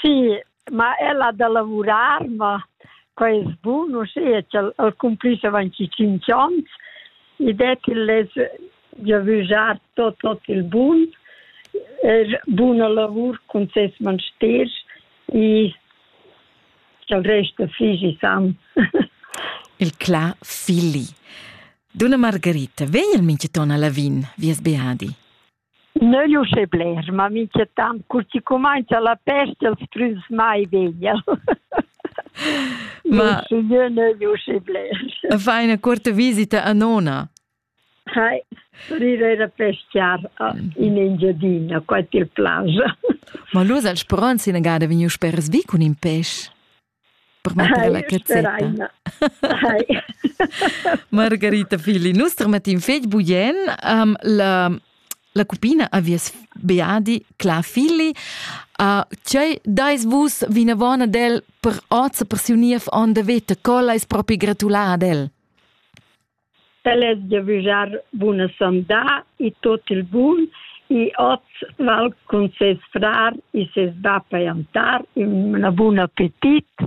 Sì, ma ella da lavurar, ma quai es bun, uschea ch'el el cumplis avanti tschinch ons. I det il less giavüschar tot tot il bun, er buna lavur cun ses mansters e cha'l rest figi san. Il Cla figli. Dunna Margherita, vegl minchaton a Lavin, vias Beadi? Neu'l uschè bler, ma minchatant cur chi cumainza la pesta els früs mai veglia. ma jeu neu'l uschè bler. Fa ina corta visita a nona? Hai, sorrir era pescar in Engiadina, qua til plaja. ma lu sal speronz ina gada vegniu sper sbi cun in pes? Permetter la cazzetta. Hi. Margarita Fili, nus termettin fetg bugen. Um, la, la cupina avies beadi Cla Fili. Uh, cei dais vus vinavona del per oza per siu niev on de veta, colla is propi gratulada ad el? El es giavüschar buna sandà e tuot il bun e hoz val cun ses frar e ses bap a jantar ün bun appetit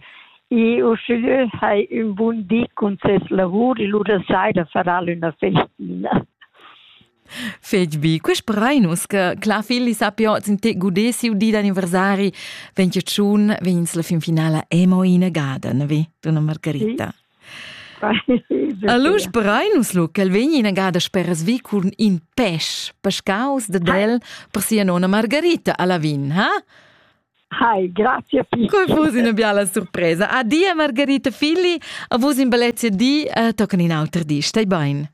e uschigliö hai ün bun di cun ses lavur e lura saira farà l'üna festina. Fetg bi, quest brainus che Cla Filli sappia oz in te gudé siu di d'anniversari, vegn tschun, vegn ins la fin finala emo in a gaden, vi, tu non Margarita. Sì. Alus Breinus lu ch'el vegni inagada speras vi cun in pesch pescaus de del per sia nona Margarita a Lavin, ha? Hi, grazie Pippi. Come fosse una biala sorpresa. Adia Margarita Filli, a vos in balezia di, uh, toccano in auter di, stai bene.